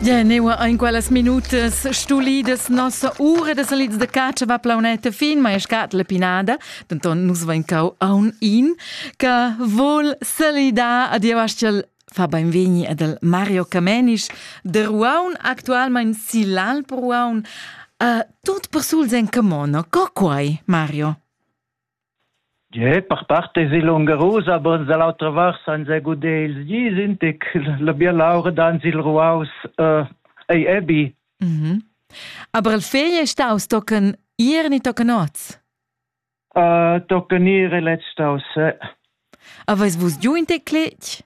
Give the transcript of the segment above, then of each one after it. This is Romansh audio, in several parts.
Ja, neua ein quellas minutas stulidas nossa ura de salids de catscha va plauneta fin, mai scat la pinada, denton nus vain cau aun in, che vol salidar a Dievastel fa beinvegni ad el Mario Camenisch, de Ruaun, actualmein Silal per Ruaun, uh, tot per sul sen camono, co quai, Mario? Gie, per part esi lungarus, aber dall'autra vart senza guder ils gis in tic. La bialaura dans il ruaus äh, ei ebi. Mhm. Aber il fegl è staus tochen ir ni tochen oz? Uh, tochen ir e lez staus. Aveis vus giu in tec cletg?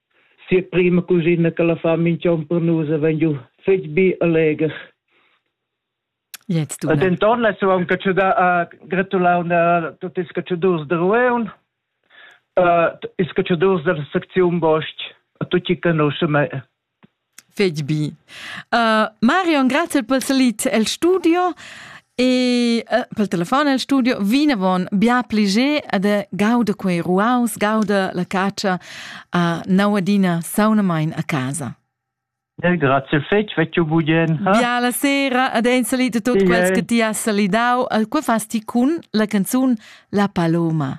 sia prima cugina che la fa minch'on per nus e vegn giu fetg bi e leger. Jetzt du. denton la suon che ci da a gratulau na tutti ils cacciadurs de Rueun, uh, ils cacciadurs della secziun Bosch, a tutti conoscem Fetg bi. Uh, Marion, grazie per salit el studio e uh, pel telefon el studio vinavon bia pliger ad gauda quei ruaus, gauda la caccia a nauadina saunamain a casa. E grazie fetg, vecchio budien. Ha? Bia la sera, ad ein salit tot sì, quels eh. che ti has salidau, al quei fas ti cun la canzun La Paloma.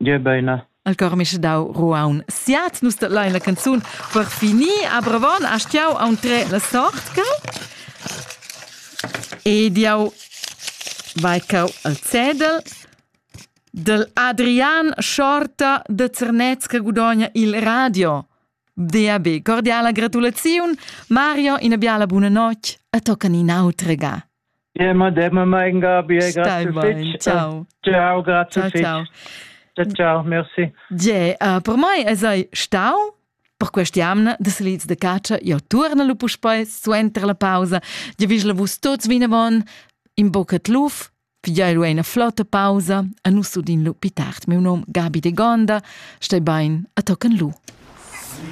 Gie beina. El Cormisch dau Ruaun siat nus dat lein la canzun per finir a Bravon a stiau auntre la sort cau ed jau vai cau al cedel del Adrian Schorta de Zernez che gudogna il radio Dia be cordiala gratulaziun, Mario, ina biala buna notg e toccan in autra ga. Ja, madame, mein Gabi, grazie fitch. Ciao. Ciao, grazie fitch. Ciao, ciao, merci. Ja, uh, per mai es ei stau per questa jamna de salids de caccia io torna lu puspei suenter la pausa ja vis la vus tots vinavon in boccat luf Figei lu ina flotta pausa e nus udin lu pli tard miu num Gabi de Gonda, stei bein a tochen lu.